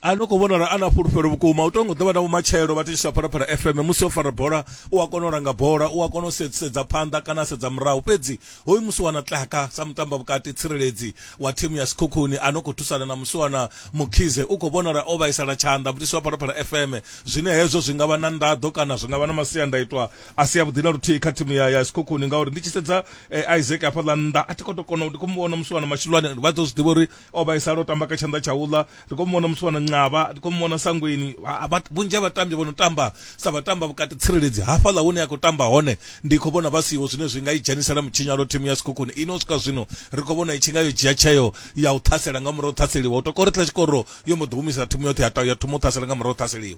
a no khou vhona uri a na fhulufhelo vhukuma u tongo ḓovha na vhumatshelo vha tishisa phalaphala fm musi o fara bola u a kona u langa bola u a kona u sedza phanḓa kana sedza murahu fhedzi hoyu musi wana tlaka sa mutamba vhukati tsireledzi wa thimu ya sikhukhuni a no khou thusana na musi wana mukhize u khou vhonala o vhaisala tshanḓa mutisi wa phalaphala fm zwine hezwo zwi nga vha na nḓaḓo kana zwi nga vha na masiandaitwa a si avhuḓi na luthihi kha thimu ya ya sikhukhuni ngauri ndi tshi sedza eh, isaac hafhaḽa nnḓa a thi kho to kona ndi khou mu vhona musi wana mashulwane vha ḓo zwi ḓivha uri o vhaisala o tamba kha tshanḓa tsha uḽa ri khou muvhona musiwana nqavha ri khou muvhona sangweni vhunzhi ha vhatambi vho no tamba sa vhatamba vhukati tsireledzi hafhaḽa hune a khou tamba hone ndi khou vhona vha siho zwine zwi nga i dzhenisela mutshinyalo thimu ya sikhukhuni ino u swika zwino ri khou vhona i tshi nga yo dzhia tsheo ya u ṱhasela nga murahu ṱhaseliwa u tokori tla tshikoro yo mbo ḓi humisa thimu yoṱhe ya thoma u ṱhasela nga murahu ṱhaseliwa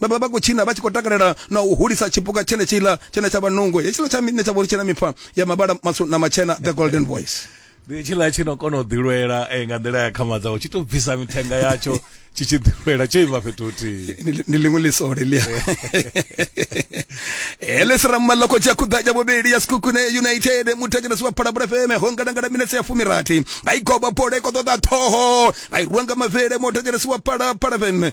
vha vha vha khou tshina vha tshi khou takalela na u hulisa tshipuka tshene tshiḽa tshene tsha vha nungo hetshiḽa tsha mine tsha vhori tshena mifa ya mavhala matswu na matshena the golden voice ndi tshiḽa tshi no kona u ḓilwela eh, nga nḓila ya khama dzawo tshi to bvisa mithenga yatsho tshi tshi ḓilwela tsho ima fhethu huthihi Ndi- ndi ḽiṅwe ḽisole ḽia ele siramalla khotsi ya khuḓa ya vhuvhili ya sikhukhune united muthetshelesi wa phalabula feme ho ngalangala minetse ya fumirathi vha i goba bola i khou ṱoḓa ṱhoho vha i rwa nga mavele muthetshelesi wa phalaphala feme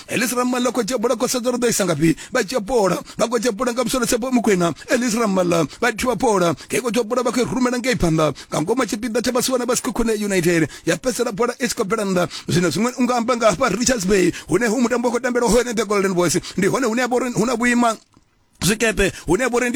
elisi ramala khou dzhia bola khosedzo ri ḓo isa ngafhi vha dzhia bola vha khou dzhia bola nga musolo tshepo mukwena elisi ramala vha thiwa bola ngei khou dzhia bola vha khou rumela ngei phanḓa nga ngoma tshipiḓa tsha vhasiwana vha sikhokhone united ya fhedzisela bola i tshi khou bvela nnḓa zwino zwiṅwe u nga amba nga hafha richards bay hune hu mutambo wa khou tambelwa hone the golden boys ndi hone hune ha vha uri hu na vhuima zwikepe hune ha vha uri